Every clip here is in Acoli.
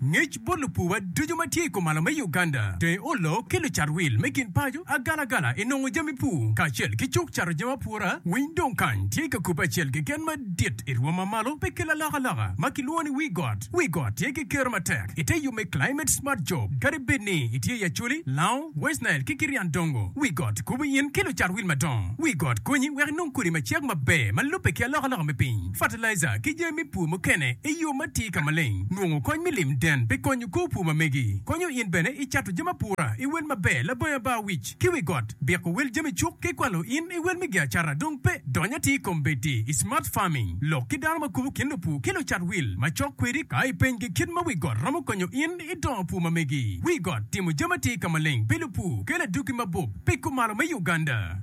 Ngec bot lupuwa ducu ma tye i kumalo me Uganda, dong olok ki lucat wil me gin paco agalagala i nongo jami pur kacel ki cuk cato jami apura. Winy dong kany tye ka kubbe acel keken madit i rwom ma malo pe kel alokaloka ma kilwongo ni Wii Got. Wii Got tye ki kero matek i te yub me Climate Smart Job. Kadi bed ni itye i Acholi, Lao, West Nile ki Kirian Dongo, Wii Got kubo in ki lucat wil madongo. Wii Got konyi wek inong kodi macek maber ma lubbe ki alokaloka me piny. fatalaija, ki jami pur mukene i yo ma tye ka maleng. Nongo kony me lim den pi konyo kor pur ma megi. Konyo in bene i cato jami apura i wel maber labongo ba wic ki wi got, biko wel jami cuk ki kwalo in i wel me gi acata dong pe. Dony atir i kom bedi i smart farming. Lok ki dano ma kubo kin lupur ki lucat wil macok kwedi ka ipenygi kit ma wi got romo konyo in i dongo pur ma megi. Wi got timo jami atir ka maleng pi lupur kelo adwogi mabup pi kumalo me Uganda.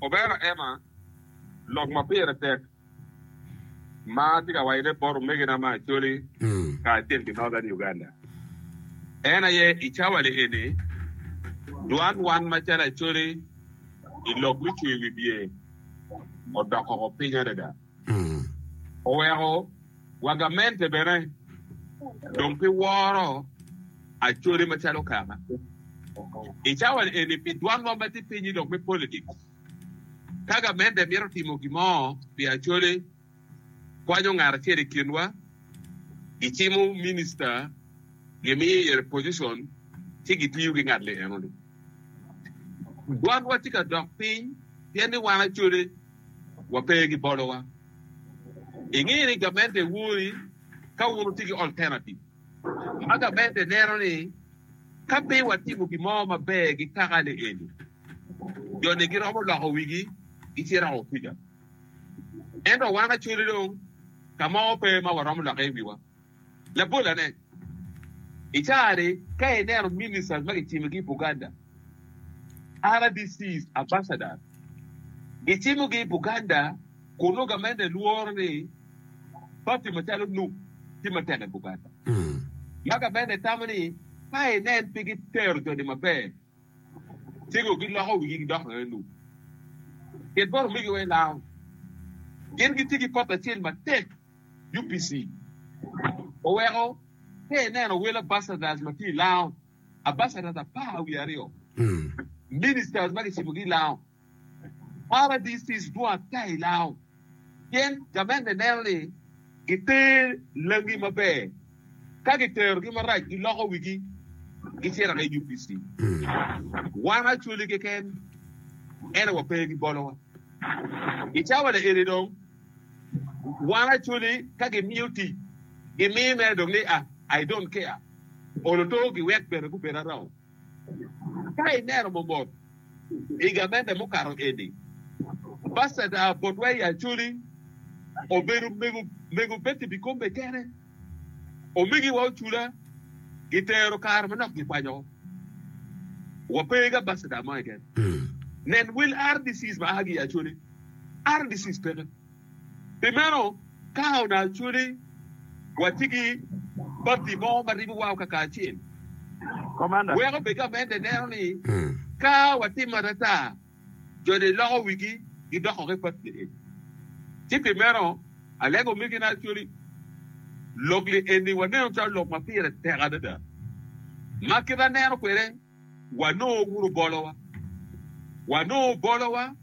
Obera Emma, lok ma pire tek ma atye ka wacone bot omegina me Acholi kacel ki Northern Uganda en aye i cawali eni dwan wan macalo Acholi i lok me cweyo wibye odoko woko piny adada. Oweko wagamente bene dong pi woro acode macalo kaka i cawa eni pi dwan wa ma tye pinyi dok me politics. Ka gamente mito timo gin mo pi acode, kwanyo ngat acel i kinwa, gicimo minister, gimiyo ire position, ci gitiyo ki ngat li eno ni. Dwatwa tye ka dok piny pien ni wan acode wape ki bolowa. Ingeyo ni gamente wori ka wun wutye ki alternative ma gamente neno ni ka pe watimo gin mo maber ki kaka ni eni, jo ni giromo loko wigi gicito woko kuca. Ento wan acode dong ka mo pe ma waromo lokke i wiwa. Labolane, I caa-ni, ka ineno ministers ma kicimogi i Buganda, RDCs, ambassadors, gicimogi i Buganda kunnu gamente lworo ni party macalo nup tye matek i Buganda, ma gamente tamo ni ka inen pe gitero jo-ni maber. Cego giloko wigi gidoko mere lum. Ket bot omeggiwa i lawu. Gin gitye ki papa acel matek, UPC. Oweko pe ineno wel Ambassadors ma tye i lawu, Ambassadors apar wiye aryo, Ministers ma kicibogi i lawu. Paradicis dwat ka i lao, pien gamenne neno ni giter langi maber, ka giterogi marac giloko wigi gicito ki UPC. Wan Acholi keken ento wape ki bolowa. I cawa ni eni dong wan Acholi ka gimiyo tic gimiyo mere dong ni ah I don't care, olo to giwek bene gubed arao. Ka ineno mobot i gamente mukato eni, Paseta Botway Acholi obedo mego mego pe ki bikombe kene, omegi wa ocula gitero kare manok gikwanyo wa pe ki Ambassador mo keken. Nen Will Ardissis ma aa ki i Acholi, Ardissis peke. Pi meno, ka onongo acwali watye ki pati mo ma ribowa kakaacel, wek obed gamente neno ni ka watimo atata, jo-ni loko wigi gidoko ki pati-ni. Ci pi meno, alego omegina acwali, lok-li eni waneno calo lok ma pire tek adada ma kite aneno kwede. wanongo wunu bolowa. Wanongo bolowa,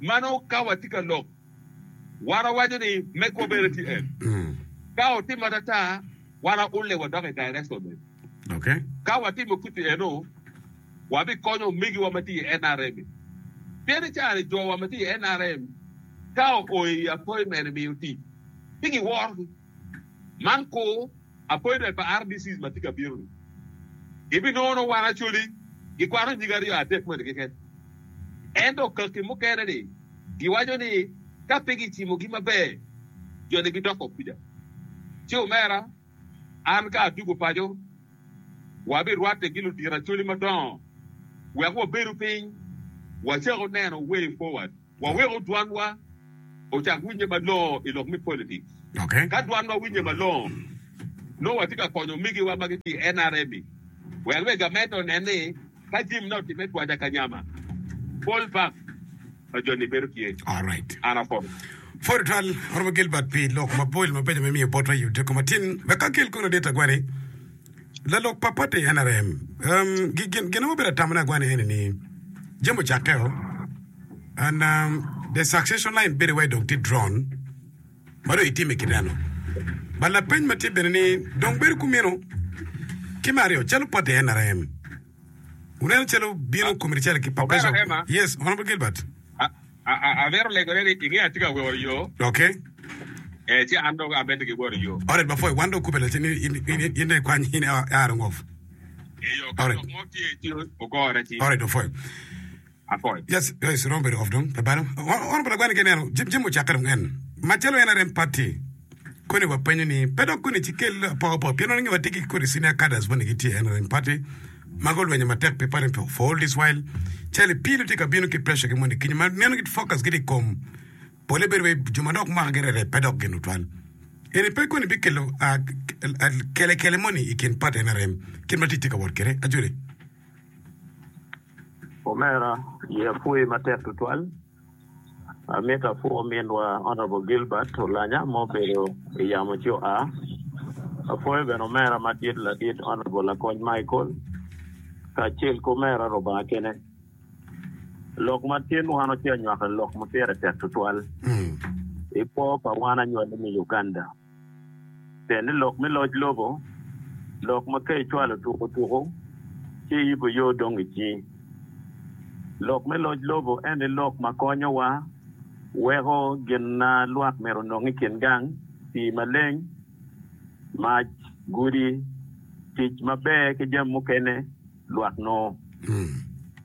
ma nongo ka watye ka lok, wan wawaco ni megwa bene tye en. Ka otimo atata, wan aulle wadok i direction ne. Ka watimo kit-ti eno, wabikonyo omegiwa ma tye i NRM. Pien i caa-ni jowa ma tye i NRM ka oo i appointment miyo tic, ci giworogi. Man kur. Appointment pa RDCs ma tye ka bino ni gibinongo nongo wan Acholi gikwano nyige aryo adek moni keken. Ento kaki mukene ni giwaco ni ka pe gicimo gi maber jo ni gidoko kwija. Ci omera an ka adugo paco wa bi rwatte gi ludito Acholi madongo wek wabedo piny wacaku neno way forward. Wawek odwanwa ocak winye malongo i lok me politics. Ka dwanwa winye malongo, nongo watye ka konyo omigiwa ma gitye i NRM-mi. Wel wek gamente onen ni ka jami nongo otimme twaja ka nyama, pol bang ma joni bedo tye. An apoto. Pwod twal oromo Gilbert pi lok mapol mabeco ma imiyo botwa i odiko matin. Wek akel konu adit agwali. Lalok pa pati nrm gin nongo bedo atamane agwanne ene ni jami ocakke o and the succession line bedo iwaci dong tye drawn ma dong itime kit eno. But lapeny ma tye bene ni dong bedo kumino ki me aryo calo pati nrm wuneno calo bino committee calo ki pa President yes Honorable Gilbert. Amito legone ni inge atye ka woro yo. Doki. Ee, ci an dong abed ki woro yo. Alright, ba Foy, wan dong kube lacen ni in dong ikwany, in i Iron Wolf. Eyo, ka lok mo tye ci ogora ci. Alright, ba Foy. Afoy. Yes, yes, iromo bedo off dong, labalo. Honorable Agwani ka ineno, Jim, Jim ocakke dong en. Macalo en arem party, koni wapenyo ni, pe dok koni ci kel apoga apoga, pien wan angeyo watye ki kodi senior cadres moni gitye en arem party, ma gulwenyo matek pi pwony me For All This While, cal i pii-nu tye ka bino ki presha ki moni kinya ma meno giti focus giti i kom. Pole bedo wai jo ma dok mwaka gi rere pe dok gin tutwal. Eni pe koni bikelo kelekele moni i kin pat NRM kit ma tic tye ka wot kwede? Ajoli. Omera, ye apwoyi matek tutwal. Amito apwo ominwa Honourable Gilbert Olanya ma obedo I yamo ci oa. Apwoyo bene omera madit ladit Honourable Lakony Michael kacel ki omera Rubanga kene. Lok ma tye nwano ci anywako lok ma pire tek tutwal I kwo pa wan anywali me Uganda. pien ni lok me loc lobo, lok ma ka icwalo tuko tuko ci iyubo yo dong ici. Lok me loc lobo en aye lok ma konyowa weko gin ma lwak myero onong i kin gang, pii maleng, mac, gudi, tic maber ki jami mukene lwak nongo.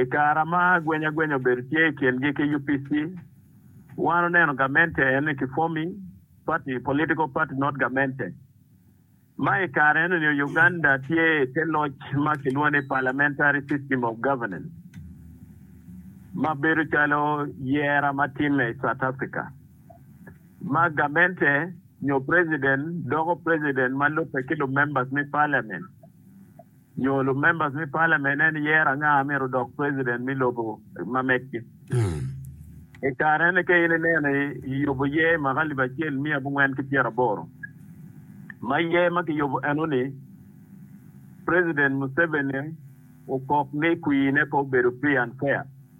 I kare ma agwenyagwenya obedo tye i kingi ki UPC, wan oneno gamente eno ni ki forming party, political party not gamente, ma i kare eno ni Uganda tye i te loc ma kilwongo ni parliamentary system of governance ma bedo calo yera ma timme i South Africa ma gamente nyo president doko president ma lubbe ki lumembers me parliament. nyo lumembers me parliament en yero anga a myero odok president me lobo ma megi. I kare eni ka in ineno i yubo yer mwaka alip acel miya abongwen ki pyera aboro ma yer ma ki yubo eno ni president Museveni okok ni kwine pe obedo free and fair.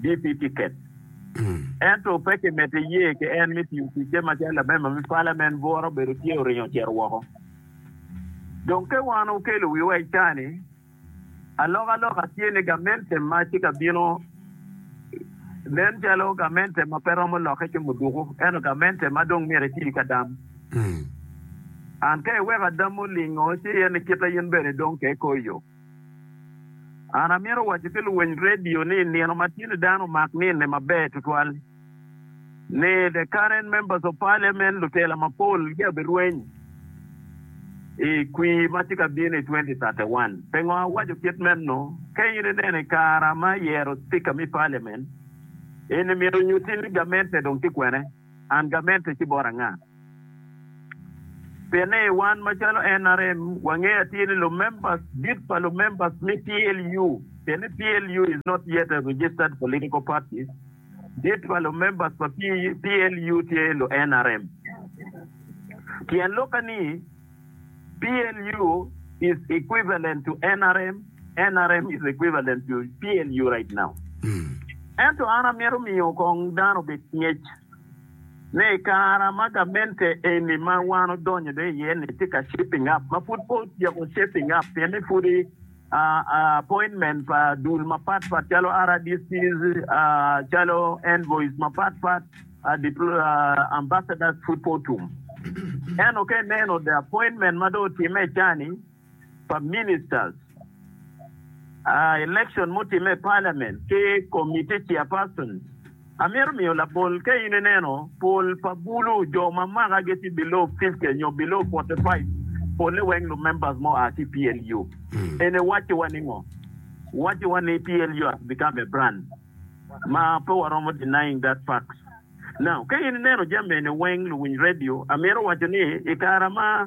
DP tiket, ento pe kimedde ye ki en me tiyo ticce macalo lamemba me palament bwura obedo tye oringo ocito woko. Dong ka wan okelo wiwa i cani, alokaloka tye ni gamente ma tye ka bino nen calo gamente ma pe romo lokke ki muduku ento gamente ma dong myero eti ka dam. And ka iweko adam olingo ci en kite in bene dong ke ikoyo. An amito waco ki luwiny redio ni nino ma tye ni dano omak nine maber tutwal ni the current members of parliament lutela mapol gia birweny i kwir ma tye ka bino i twenty thirty one. Pingo awaco kit meno? Ka in ineno i kara ma yero speaker me parliament, in imito nyuti ni gamente dong tye kwene? And gamente tye bot anga? Pien ni wan macalo NRM wangeyo atir ni lumemba dit pa lumemba me PLU, pien ni PLU is not yet a registered political party, dit pa lumemba pa PLU tye lu NRM. Tyen lokke ni, PLU is equivalent to NRM, NRM is equivalent to PLU right now. Ento an amito miyo kong dano obed ki ngec. ne i kara ma gamente eni ma wan odonyo dong iye ni tye ka shaping up ma pud pe otyeko shaping up pien ni pudi appointment pa dul mapat pat calo RDCs calo envoys mapat pat ambassadors pud pe otum ento ka ineno the appointment ma dong otimme icani pa Ministers, Election mutimme i Parliament ki Committee Chairpersons, amito miyo labol ka in ineno pol pa bulu jo ma makagi tye below fifty nyo below forty five polle weng lu members mo aa ki PLU. Eni wacci wa ni ngo? Wacci wa ni PLU has become a brand ma pe waromo denying that facts. Now ka in ineno jami eni weng luwiny radio amito waco ni i kara ma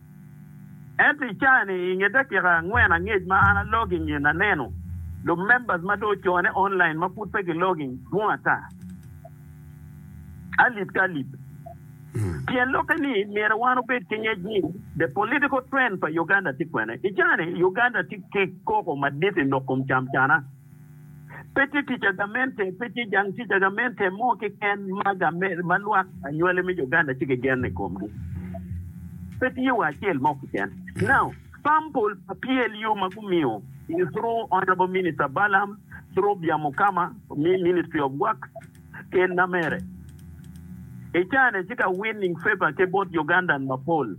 Ento i caa-ni, i nge dakika angwen angec ma an alogging in, aneno lumembers ma dong ocone online ma pud pe gilogging dwong ata, alip ki alip. Tyen lokke ni myero wan obed ki ngec ni the political trend pa Uganda tye kwene. I caa-ni, Uganda tye ki koko madit i lok kom camcana. Pe tye kica gamente, pe tye jang kica gamente mo keken ma game, ma lwak anywali me Uganda tye ki gen i komgi. Pe tye wa acel mo keken. Now, sample pa PLU ma gumiyo is through Honourable Minister Balaam, through Byamukama, mi Ministry of Works, Ken Namere. I caa-ni tye ka winning favour ki bot Ugandan mapol.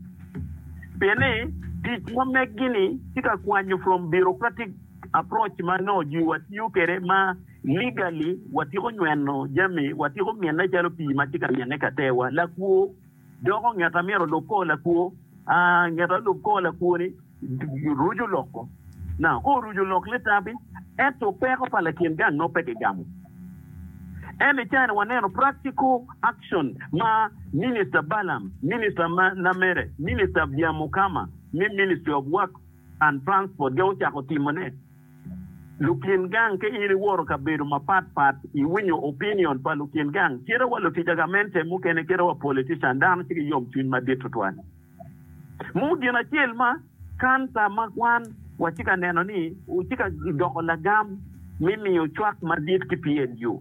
Pien ni tic ma meg-gi-ni tye ka kwanyo from bureaucratic Approach ma nongo jwi wa tiyo kwede ma legally wa tiko nyweno jami wa tiko mine calo pii ma tye ka mine kater wa lakwo doko ngeta myero olub kor lakwo aa ngeta olub kor lakwo ni rucu lok ko now ka orucu lok ni tabi ento peko pa lakin gang nongo pe ki gamo en i cani wa neno practical action ma minister Balam minister Lamere minister Biamukama me ministry of work San Francisco jo ocako timone. Lukin gang ka in iwoto kabedo mapat pat iwinyo opinion pa lukin gang cite wa lutica gamente mukene cite wa politician dano ci giyom cwiny madit tutwal mo gin acel ma kansa ma kwan wa ci ka neno ni ci ka doko lagam mi miyo cwak madit ki PNU.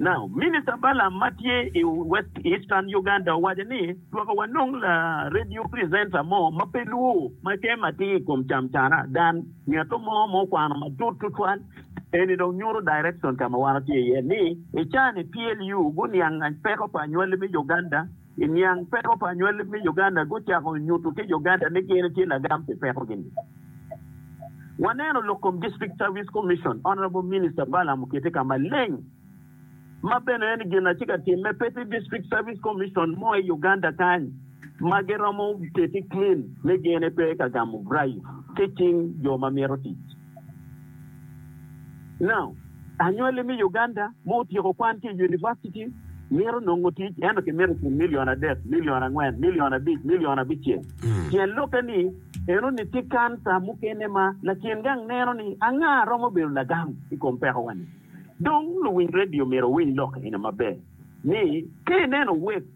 Now, Minister Balaam ma tye i West Eastern Uganda owaco ni, Twaka wanong la radio presenter mo ma pe lwo ma tem atir i kom cam cana dan ngeto mo ma okwano matut tutwal. Eni dong nyuto direction ka ma wan watye iye ni, i caa ni PLU guniang peko pa anywali me Uganda. I niang peko pa anywali me Uganda gucako nyutu ki Uganda ni gin tye lagam pi pekogi ni. Waneno lok kom District Service Commission, Honourable Minister Balaam okete ka maleng ma bene en gin atye ka timme pe tye District Service Commission mo i Uganda kany ma giromo keti clean ni gin pe ka gamo bribe ki cing jo ma mito tic. Now, anywali me Uganda ma otyeko kwan ki i univaciti mito nongo tic, ento kimito i kin milion adek, milion angwen, milion abic, milion abicel. Pien lokke ni, enoni tye kanca mukene ma lakin gang neno ni anga a romo bedo lagam i kom pekowa-ni. Dong, luwiny redio myero wuwiny lok eni maber ni, ka ineno web,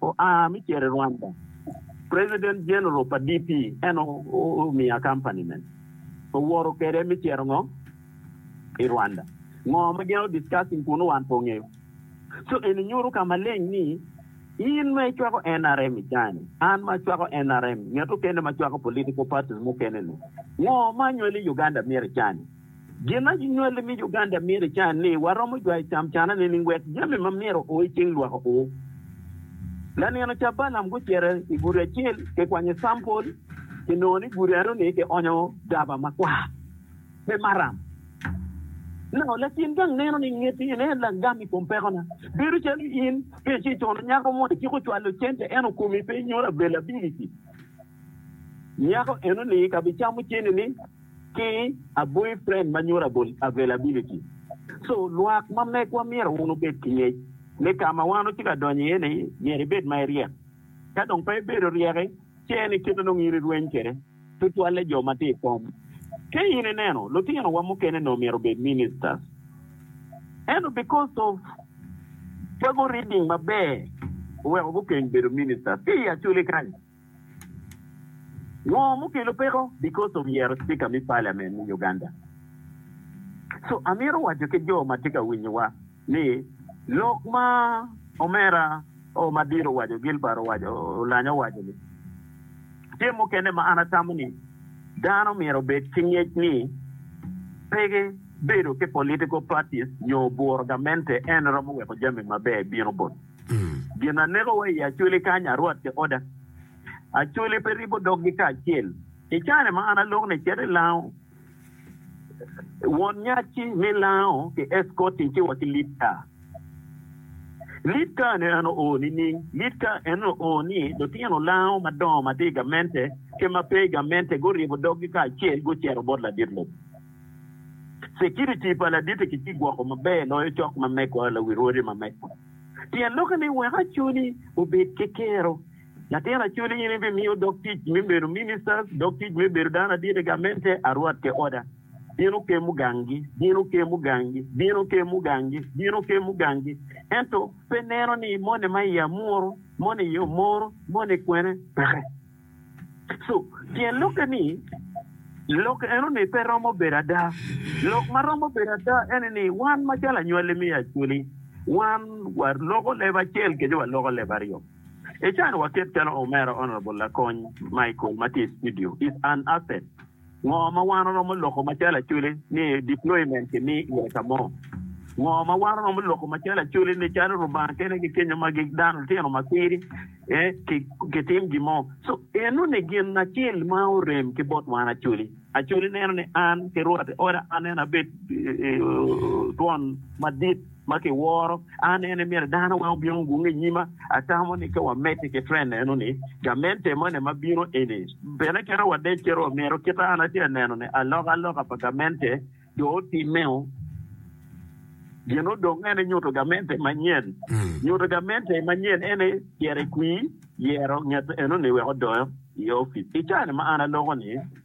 oa me cer i Rwanda, President General pa DP en omiya company mene, owoto kwede me cito ngo? I Rwanda. Ngo ma gin o discussing kunu wan pe ongeyo. So eni nyuto ka maleng ni in ma icwako nrm i cani, an ma acwako nrm, ngeto kene ma cwako political parties mukene ni ngo ma anywali i Uganda myero icani. Gin ma ginywali ni Uganda myero ican ni, Waromo jwayo camcana nining wek jami ma myero o i cing lwak o? Lanino ca Balaam gucito i gudi acel kikwanyo campol, kinongo ni gudi aryo-ni kionyo daba makwar. Pe maram. Nao latin gang neno ni ngeti en aye lagam i kom pekona. Bedo calo in pe ci cono nyako mo iciko cwalo cente ento komi pe nyuto availability, nyako eno-ni ka bicamo cente-ni. ki a boyfriend ma nyuto availability. So lwak ma megwa myero wun wubed ki ngec ni ka ma wan watye ka donyo iye ni myero ibed ma iryek. Ka dong pe ibedo ryeki ce ni kit ma nongo in irweny kwede tutwalle jo ma tye i kom. Ka in ineno lutino wa mukene nongo myero obed ministers ento because of pe gureading maber oweko gukeng bedo ministers ki i acoli kany. Ngo mukelo peko because of yero speaker me parliament me Uganda. So amito waco ki jo matye ka winyo wa ni lok ma omera o madit owaco Gilbert owaco Olanyo owaco ni tye mukene ma an atamo ni dano myero obed ki ngec ni pe bedo ki political parties nyo buro gamente en romo weko jami maber bino bot Gin a nekowa i Acoli kany a rwat ki oda. Acoli pe ribo doggi kacel. I kare ma an alok ni cito i Lango, won nyacci me Lango ki escorting ci wa ki Litka. Litka ni en oo nining? Litka en oo ni lutino Lango madongo ma tye i gamente ki ma pe i gamente guribo doggi kacel gucito bot ladit lobo. Cikiriti pa laditi ki kigwoko maber loyo cok ma megwa lawirwori ma megwa. Tyen lokke ni wek acoli obed ki kero. Latin acoli in ibimiyo dog tic me bedo ministers, dog tic me bedo dano adit i gamente, arwat ki oda. Bino kemu gangi, bino kemu gangi, bino kemu gangi, bino kemu gangi. Ento pe ineno ni moni ma iye amuru, moni iye omoro, moni kwene peke. Tyen lokke ni, lok enoni pe romo bedo ada. Lok ma romo bedo ada ene ni wan macalo anywali me Acholi, wan waloko leb acel kenyo waloko leb aryo. Icano waket calo Omera Honourable Lakony Michael ma tye i studio is an asset. Ngo ma wan oromo loko macalo Acholi ni deployment ki mi iye ka mo? Ngo ma wan oromo loko macalo Acholi ni calo Rubanga kene ki kenyo ma gi dano lutino ma piri ki tim gi mo? So eno ni gin acel ma orem ki bot wan Acholi. Acholi neno ni an ki rwate oda an en abed twon madit. ma kiworo an en ni myero dano wek obin ogung i nyima. Atamo ni ka wamedde ki twen neno ni gamente moni ma bino eni bene keto wadec calo wamyero kite an atye ka neno ni alokaloka pa gamente dong otimmeo. Gin odong ene nyuto gamente manyen. Nyuto gamente manyen ene tyero ekwir yero nget enoni wek odonyo i opic. I caa ni ma an aloko ni,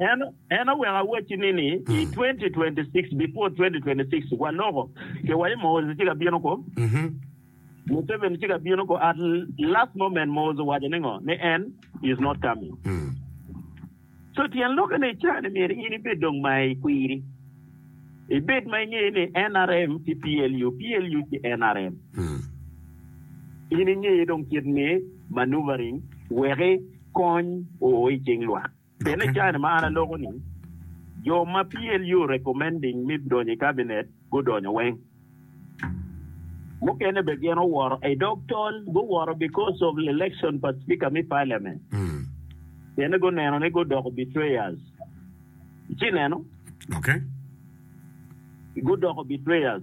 En oweko awacci ni, ni i 2026, before 2026, waloko ke wa i Muhoozi ci ka bino ko, Museveni ci ka bino ko, at last moment Muhoozi owaco ni ngo? Ni en is not coming. So tyen lokke ni icani myero in ibed dong ma i kwiri, ibed ma ingeyo ni nrm ki PLU, PLU ki nrm, in ingeyo dong kit me maneuvering weki kony oo i cing lwak. Pien i kare ma an aloko-ni, jo ma PLU recommending me donyo i Cabinet gudonyo weng. Mukene bene gin oworo i dog tol, guworo because of election pa Speaker me Parliament. Pienne guneno ni gudoko betrayers. Ici neno? Gudoko betrayers.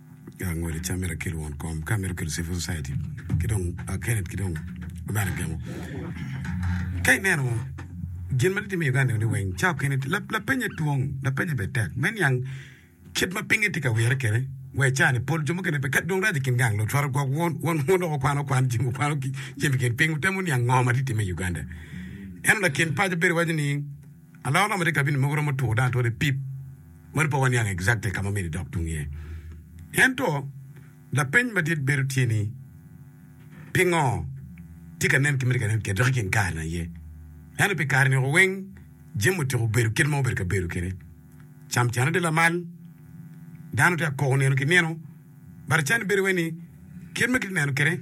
Angol i cam mirakel won kom ka mito kelo civil society ki dong akelet ki dong lubana gemo. Ka ineno gin ma titimo i Uganda ni weng ca okene lapenye twong, lapenye be tek. Me niang kit ma pinye tye ka wire kede we ca ni pol jo mukene be ka dong rac i kin gang lutwaro gwok won won won dok okwano kwan jing okwano jing kin piny wutemo niang ngo ma tye time i Uganda. Eno lakin paco bedo waco ni Alor romo tye i kabin mogo romo two dong atwere pip moni pe waniang exactly ka ma omido idok tung iye. Ento lapeny madit bedo tye ni pingo tye ka nen ki miti ka nen kit dok i kin kare-ni aye? Ento pi kare-ni woko weng jami otyeko bedo kit ma obedo ka bedo kwede. Camcane tye lamal, dano tye ka koko nino ki nino, but can bedo wai ni kit ma kitye neno kwede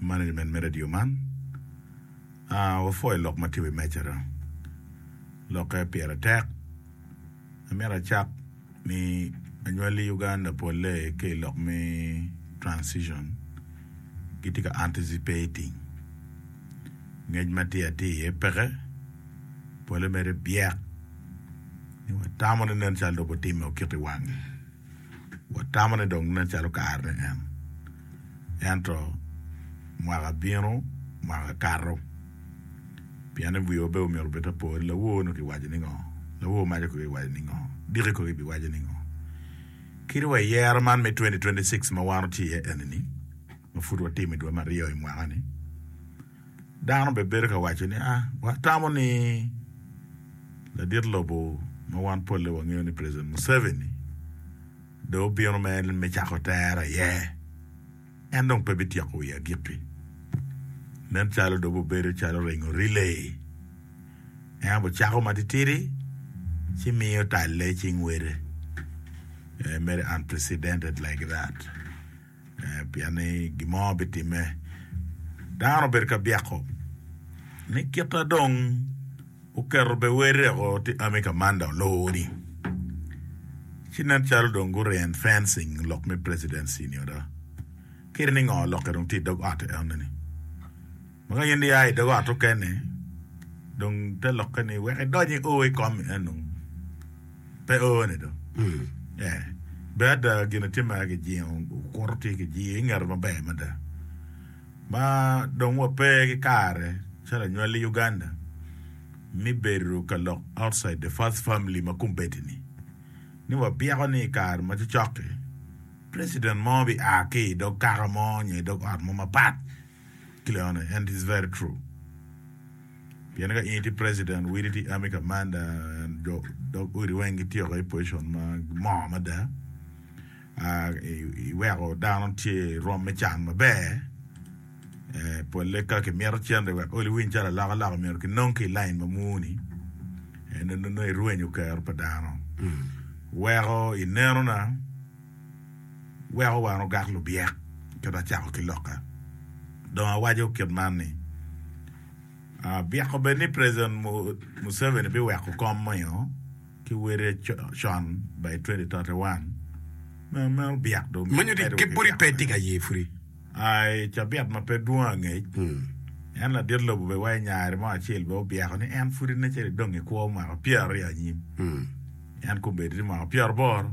Management me radio man wapwoyo lok ma tye i wi mejara. Lokke pire tek. Amito acak ni anywali Uganda polle ki i lok me transition gitye ka anticipating. Ngec ma tye atir iye peke. Polle mere byek. Watamo ni nen calo dong gutimme okiko i wangi. watamo ni dong nen calo kare ni en. Ento mwaka bino, mwaka kato. Pien ni wiwa bene omyero obed apo ni lawor nongo kiwaco ningo, lawor maco kono kiwaco ningo, diki kono kibiwaco ningo. Kit wa i yero man me twenty twenty six ma wan watye iye eni-ni, ma pud watimo i dwe me aryo i mwaka-ni, Dano bene bedo ka waco ni, Ah, watamo ni ladit lobo ma wan polle wangeyo ni President Museveni dong obino me cako tere aye. En dong pe bityeko wiye agikki. Nen calo dong bibedo calo ringo riley. En aye bicako matitidi ci miyo talle i cing wede. Mere unprecedented like that. Pien ni gin mo bitimme. Dano obedo ka byeko ni kita dong oketo be wer reko ti ami ka manda olowo ni. Ci nen calo dong gu ren fencing lok me presidency ni ada. Kit ni ngo lokke dong ti idog ote eno ni. Ma ka in ia i dog ot okene, dong te lokke ni wek idony i ur i kom en dong pe orne do. Eh, bed ada gin atye ma kijingo okuto tye kijiyo i ngeto maber mada. Ma dong wa pe ki kare calo anywali i Uganda mi bedo ka lok outside the first family ma kombeddi ni. Ni wa byeko ni i kare ma cocok-ki, president mo bi a ki i dog kaka mo nyo i dog ot mo mapat ki leone and is very true pien ka in tye president widi tye army commander and jo dog odi weng gitye woko i position ma moo mada I weko dano tye I rwom me can maber pole ka kimito cente wek oli winy calo alok alok omyero ki nong ki I line ma mur ni nongo irwenyo kero pa dano weko ineno na. weko wan ogak lubyek kit ma acako ki lokka. Dong awaco kit man ni, abyeko bed ni President Museveni biweko kom meno ki wele con by 2031, meno obyek dong mito medo ki byeko. I cabit ma pe dwong angec, en ladit lobo bene wa i nyare mo acel bene obyeko ni en pud nen calo dong ekwo mwaka pyeraryo anyim, en komedo ni mwaka pyeraboro.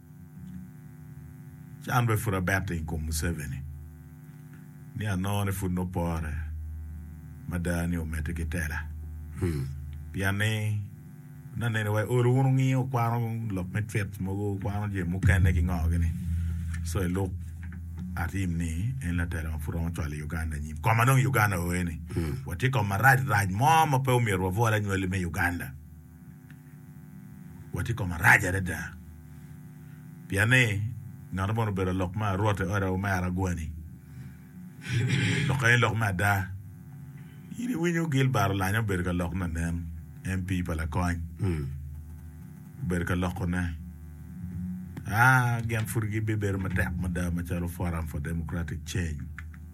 Ci an bene pud abette i kom Museveni ni anongo ni pud nongo pore mada ni omedde ki tela. Pien ni nongo anene wa i olo wun wungiyo wukwano lok me twit mogo, wukwano jami mukene ki ngo gini. So i luk atim ni en latela ma pud romo cwalo i Uganda anyim. Koma dong i Uganda oye ni watye i kom marac rac mo ma pe omyero wabwol anywali me Uganda. Wot i koma rac adada, pien ni ngat moni obedo lok me arwot i ot omera agwani. Lok eni lok me ada. In iwinyo Gilbert Olanyo obedo ka lok nanen, MP pa Lakony. Obedo ka lokone. Ah, gin pud gibibedo matek mada macalo Forum for Democratic Change.